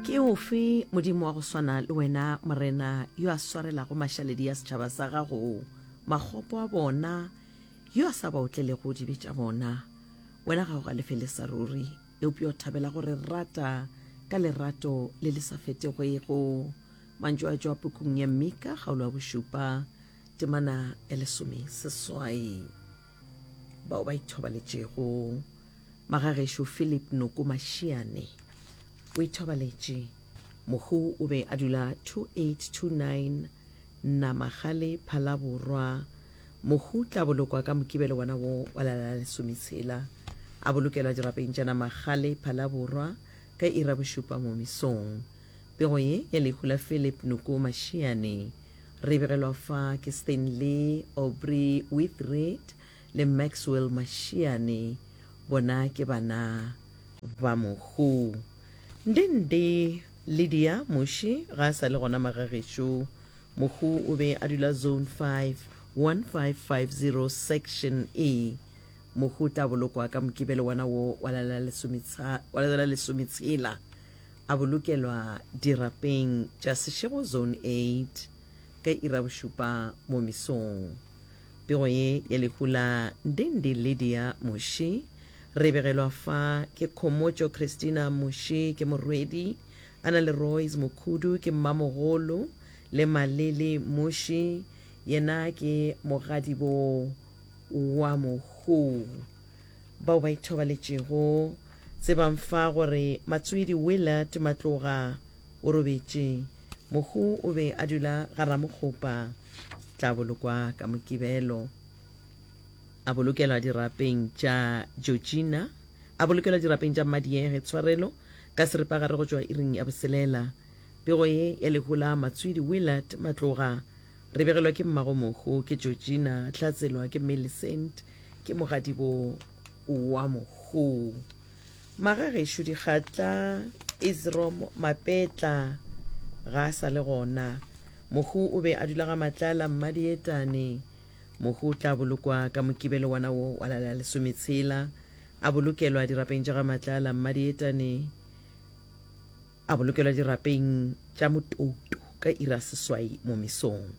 Ke ofe Modimo wa go swana le wena, Morena, yo a swarelago mašaledi a setšhaba sa gago makgopo a bona, yo a sa ba otlelego dibe tša bona? Wena ga o galefele sa ruri, eupša o thabela go re rata ka lerato le le sa fetegwego. Mantšu a tšwa pukung ya Mika, kgaolo ya bošupa, temana ya lesomeseswai. bao ba ithobaletšego magagešo philip noko mašiane o ithobaletše mohu o be a dula 2829 namagale phalaborwa mohu tla bolokwa ka mokibelo wona wo wa lala lesometshela a bolokelwa dirapeng tša namagale phalaborwa ka ira bošupa mo mesong pego ye ya lehu la philip noko mašiane Re begelwa fa ke Stanley Aubrey With Read le Maxwell Mashiane, bona ke bana ba mohu. Ndi ndi Lydia Muši ga a sa le gona magagešo. Mohu o be a dula Zone 5, 1550 Section E. Mohu o tla bolokwa ka Mokibelo wona wo wa la lesometshela. a bolokelwa dirapeng tša Seshego Zone 8 ka iri ya bošupa mo mesong. Pego ye ya lehu la Ndindi Lydia Mushi re e begelwa fa ke Khomotšo Christina Mushi ke morwedi, a na le Royce Mukhudu ke mmamogolo le Malili Mushi yena ke mogadiboo wa mohuu. bao ba ithobaletšego tse ba mfa gore Matsoedi Willard Matloga o robetše. Mohu o be a dula ga Ramokgopa. Tla bolokwa ka Mokibelo. A bolokelwa dirapeng tša Georgina. A bolokelwa dirapeng tša Mmadiege Tshwarelo ka seripagare go tšwa iring ya boselela. Pego ye ya lehu la Matsoedi Willard Matloga Re begelwa ke mmagomogo, ke Georgina, Tlatselwa ke Millicent, ke mogadibo wa mogo. Magagešo dikgatla, Isrom Mapetla ga a sa le gona. Mogo o be a dula ga Matlala Mmadietane. Mogo o tla bolokwa ka mokibelo wana wo wa lala lesometshela, a bolokelwa dirapeng tša ga Matlala Mmadietane. A bolokelwa dirapeng tša motouto ka iri ya seswai mo mesong.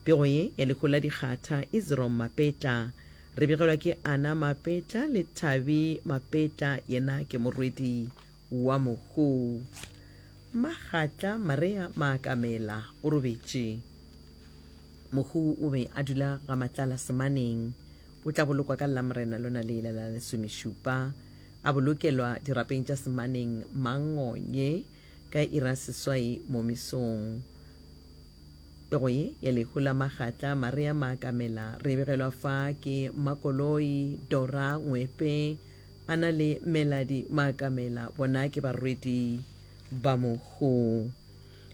Pego ye ya lehu la dikgatha, Isrom Mapetla, re begelwa ke Ana Mapetla le Thabi Mapetla, yena ke morwedi wa mohu. Magatla Marea Maakamela o robetše. Mohu o be a dula ga Matlala Semaneng. O tla bolokwa ka Lamorena lona le la lesomešupa. A bolokelwa dirapeng tša semaneng Mangonye ka iri ya seswai mo mesong. E go ye ya lehu la magatla Maria Maakamela re begelwa fa ke Mmakoloi, Dora, Ngwepe, a na le Meladi Maakamela bona ke barwedi ba mohu.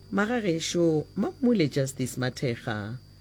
Magagešo Mammule Justice Mathekga.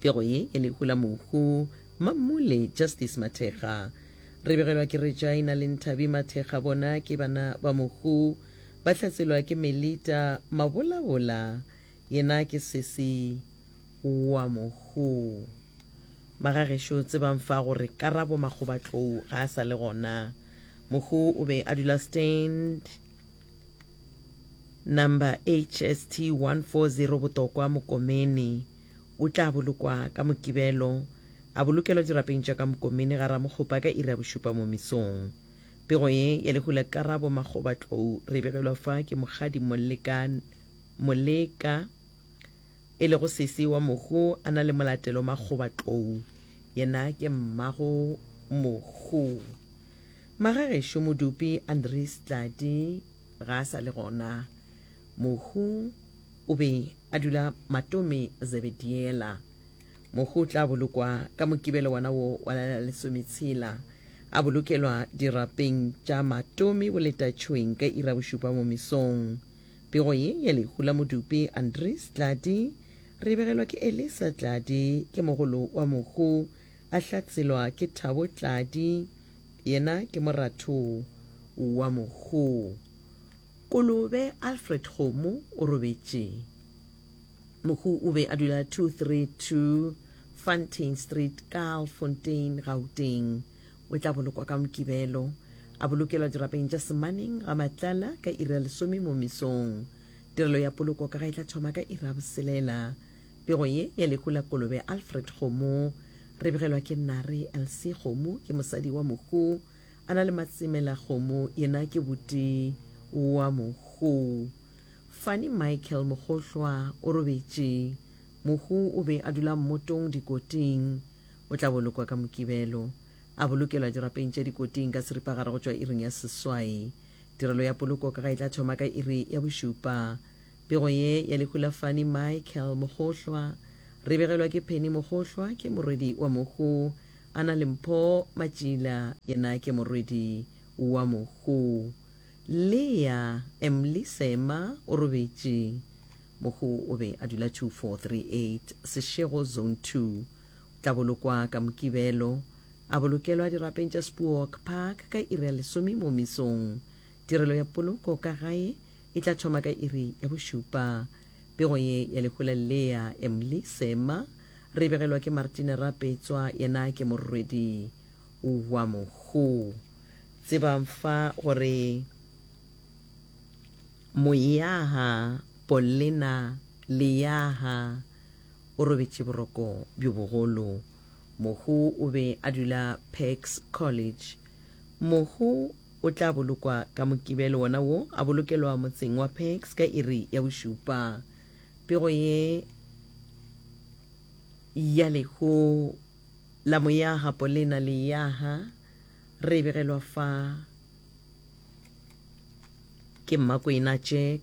Pego ye ya lehu la mohu. Mammole Justice Mathekga. Re begelwa ke Regina le Nthabi Mathekga bona ke bana ba mohu. Ba hlatselwa ke Melita Mabolabola yena ke sesi wa mohu. Magagešo tsebang fa gore Karabo Makgobatlou ga a sa le gona. Mohu o be a dula Stand. Number HST 140 Botokwa Mokomeni o tla bolokwa ka Mokibelo a bolokelwa dirapeng tša ka Mokomeni ga Ramokgopa ka iri ya bošupa mo mesong. Pego ye ya lehu la Karabo Makgobatlou re e begelwa fa ke Mokgadi Moleka Moleka E lego sesi wa Mohu, a na le molatelo makgoba tlou. Yena ke mmago Mohu. Magagešo Modupi Andries Tladi ga a sa le gona. Mohu o be a dula Matome Zebediela. Mohu o tla bolokwa ka Mokibelo wona wo wa la la lesometshela, a bolokelwa dirapeng tša Matome Boletatšhweng ka iri ya bošupa mo mesong. Pego ye ya lehu la Modupi Andries Tladi re e begelwa ke Elisa Tladi, ke mogolo wa mohu, a hlatselwa ke Thabo Tladi, yena ke moratho wa mohu. Kolobe Alfred Kgomo o robetše. Mohu o be a dula 232 Fontaine Street, Kaalfontein, Gauteng. O tla bolokwa ka Mokibelo, a bolokelwa dirapeng tša Semaneng ga Matlala ka iri ya lesome mo mesong. Tirelo ya poloko ka ga e tla thoma ka iri ya boselela. Pego ye ya lehu la kolobe Alfred Kgomo. Re begelwa ke Nnare Elsie Kgomo, ke mosadi wa mohu. A na le Matsemela Kgomo, yena ke buti wa mohu. Fani Michael Mogohlwa o robetše. Mohu o be a dula mmotong Dikoting. O tla bolokwa ka Mokibelo. A bolokelwa dirapeng tša dikoting ka seripagare go tšwa iring ya seswai. Tirelo ya poloko ka ga e tla thoma ka iri ya bošupa. Pego ye ya lehu la Fani Michael Mogohlwa. Re begelwa ke Penny Mogohlwa, ke morwedi wa mohu. A na le Mpho Matšila, yena ke morwedi wa mohu. Lea Emly Seema o robetše. Mohu o be a dula 2438 Seshego Zone Two. O tla bolokwa ka Mokibelo. A bolokelwa dirapeng tša Spooak Park ka iri ya lesome mo mesong. Tirelo ya poloko ka gae e tla thoma ka iri ya bošupa. Pego ye ya lehu la Leah Emly Seema re e begelwa ke Martine Rapetswa, yena ke morwedi wa mohu. Tsebang fa gore Moyaha, Pollena, Leyaha, o robetše boroko bjo bogolo. Mohu o be a dula Pax College. Mohu o tla bolokwa ka Mokibelo wona wo, a bolokelwa motseng wa Pax ka iri ya bošupa. Pego ye ya lehu la moyaga Polena Leyaga re e begelwa fa ke Mmakwena Jack.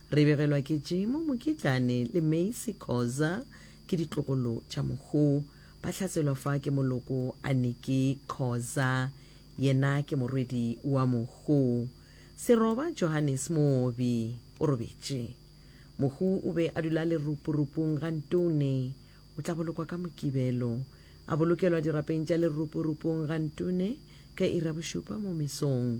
Re begelwa ke Jemo Mokitlane le Macy Khoza ke ditlogolo tša Mokgo. Ba hlaselwa fa ke moloko Aniki Khoza, yena ke morwedi wa Mokgo. Seroba Johannes Moobi o robetše. Mokgo o be a dula leroporupong ga Ntone. O tla bolokwa ka Mokibelo. A bolokelwa dirapeng tša leroporupong ga Ntone ka iri ya bošupa mo mesong.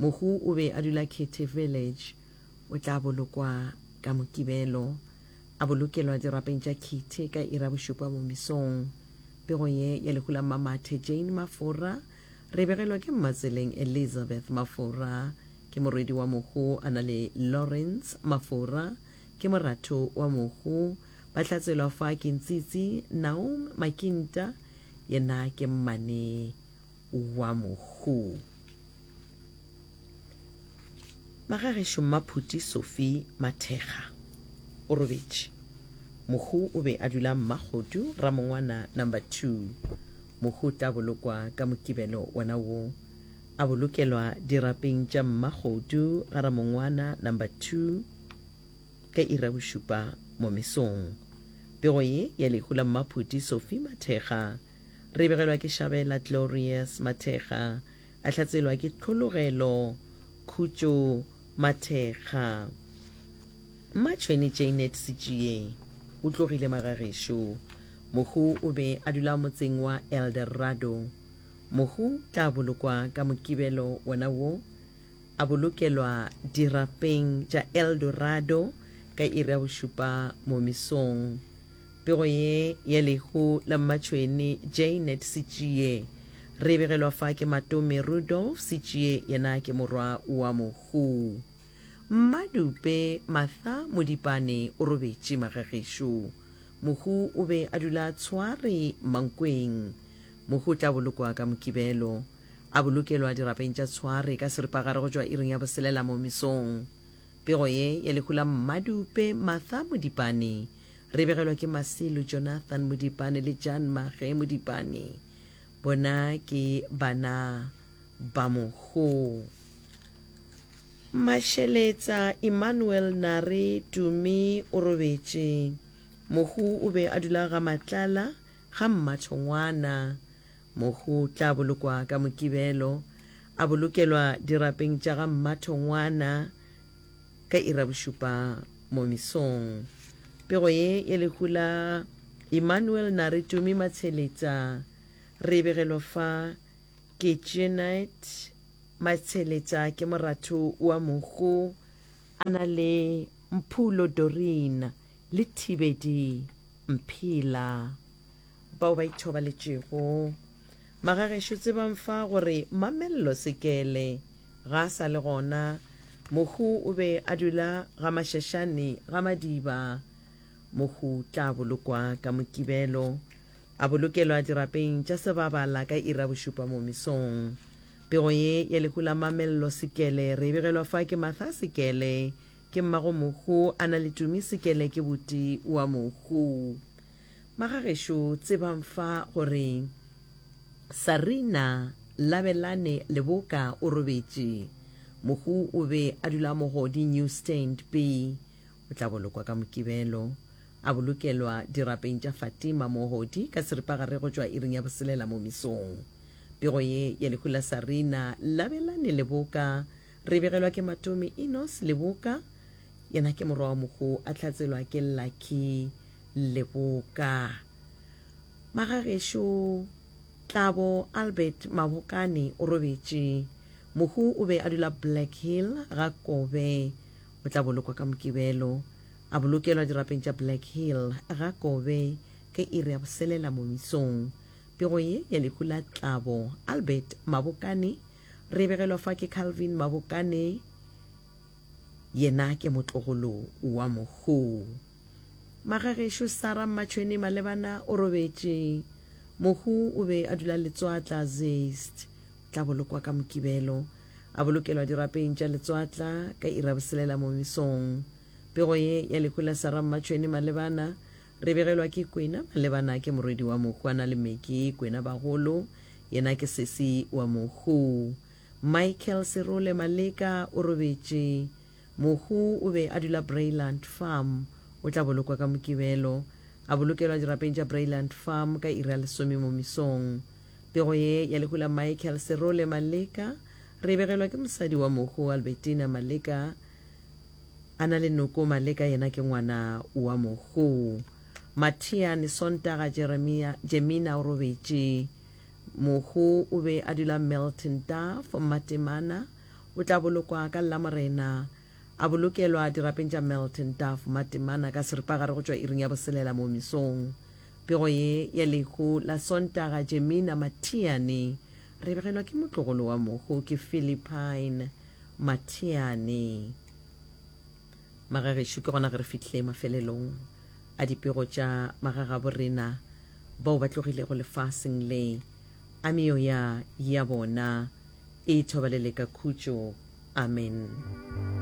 Mohu o be a dula Kitty Village. O tla bolokwa ka Mokibelo. A bolokelwa dirapeng tša Kitty ka iri ya bošupa mo mesong. Pego ye ya lehu la Mmamathe Jane Mafora re e begelwa ke Mmatseleng Elizabeth Mafora. Ke morwedi wa mohu a na le Lawrence Mafora. Ke moratho wa mohu. Ba hlatselwa fa ke Ntsitsi Naum Makinta yena ke mmane. wa Mohuu. Magagešo Mmaphuti Sophie Mathekga o robetše. Mohuu o be a dula Mmakgodu, Ramongwana number two. Mohuu o tla bolokwa ka Mokibelo wona wo. A bolokelwa dirapeng tša Mmakgodu ga Ramongwana number two ka iri ya bošupa mo mesong. Pego ye ya lehu la Mmaphuti Sophie Mathekga. Re begelwa ke Shabela Glorious Mathekga, a hlatselwa ke Tlhologelo Khutšo Mathekga. Mmatšhweni Jaynet Sitšie o tlogile magagešo. Mohu o be a dula motseng wa Eldorado. Mohu tla bolokwa ka Mokibelo wona wo, a bolokelwa dirapeng tša Eldorado ka iri ya bošupa momisong. Pego ye ya lehu la mmatšhwene Jaynet Sitšie. Re e begelwa fa ke Matome Rudolf Sitšie yena ke morwa wa mohu. Mmadupe Matha Modipane o robetše magagešo. Mohu o be a dula a tshware Mankweng. Mohu o tla bolokwa ka Mokibelo. A bolokelwa dirapeng tša Tshware ka seripagare go tšwa iring ya boselela mo mesong. Pego ye ya lehu la Mmadupe Matha Modipane. Re begelwa ke Masilu, Jonathan Modipane le Jan Mage Modipane. Bona ke bana ba mogo. Mašeletsa Emmanuel Nare Tumi o robetše. Mogo o be a dula ga Matlala, ga Mmathongwana. Mogo o tla bolokwa ka Mokibelo, a bolokelwa dirapeng tša ga Mmathongwana. Ka iri ya bošupa mo mesong. Pego ye ya lehu la Emmanuel Nare Tumi Matsheletsa re e begelwa fa ke Jeanette Matsheletsa ke moratho wa mohu a na le Mphulo Doreen le Thibedi Mphila bao ba ithobaletšego Magagešo tsebang fa gore Mamello Sekele ga a sa le gona. Mohu o be a dula ga Mashashane ga Madiba. Mohu tla bolokwa ka Mokibelo. A bolokelwa dirapeng tša Sebabala ka iri ya bošupa mo mesong. Pego ye ya lehu la Mamello Sekele re e begelwa fa ke Martha Sekele ke mmago Mohu a na le Tumi Sekele ke buti wa Mohu. Magagešo tsebang fa gore Sarina Labelane Leboka o robetše. Mohu o be a dula Mogodi New Stand B. O tla bolokwa ka Mokibelo. A bolokelwa dirapeng tša Fatima Mohodi ka seripagare go tšwa iring ya boselela mo mesong. Pego ye ya lehu la Sarina Labelane Leboka re begelwa ke Matomi Enos Leboka, yena ke morwa wa mohu a hlatselwa ke Lucky le boka. Magagešo Tlabo Albert Mabokane o robetše. Mohu o be a dula Black Hill ga Kobe. O tla bolokwa ka Mokibelo. A bolokelwa dirapeng tša Black Hill ga Kobe ka iri ya boselela mo mesong. Pego ye ya lehu la Tlabo Albert Mabokane re e begelwa fa ke Calvin Mabokane, yena ke motlogolo wa mohu. Magagešo Sarah Mmatšhweni Malebana o robetše. Mohu o be a dula Letswatla, Zeist. O tla bolokwa ka Mokibelo. A bolokelwa dirapeng tša Letswatla ka iri ya boselela mo mesong. Pego ye ya lehu la Sarah Mmatšhweni Malebana re e begelwa ke Kwena Malebana ke morwedi wa mohu a na le Meki Kwena Bagolo yena ke sesi wa mohu. Michael Serole Maleka o robetše. Mohu o be a dula Breyland Farm. O tla bolokwa ka Mokibelo. A bolokelwa dirapeng tša Breyland Farm ka iri ya lesome mo mesong. Pego ye ya lehu la Michael Serole Maleka re e begelwa ke mosadi wa mohu Albertina Maleka. A na le noko Maleka yena ke ngwana wa mohu. Mathiane Sontaga Jeremia Jemina o robetše. Mohu o be a dula Milton Duff, Matemana. O tla bolokwa ka Lamorena. A bolokelwa dirapeng tša Milton Duff Matemana ka seripagare go tšwa iring ya boselela mo mesong. Pego ye ya lehu la Sontaga Jemina Mathiane re begelwa ke motlogolo wa mohu ke Philippine Mathiane. Magagešo ke gona ge re fihle mafelelong a dipego tša magagaborena bao ba tlogilego lefaseng le. A meoya ya bona e thobalele ka khutšo. Amen.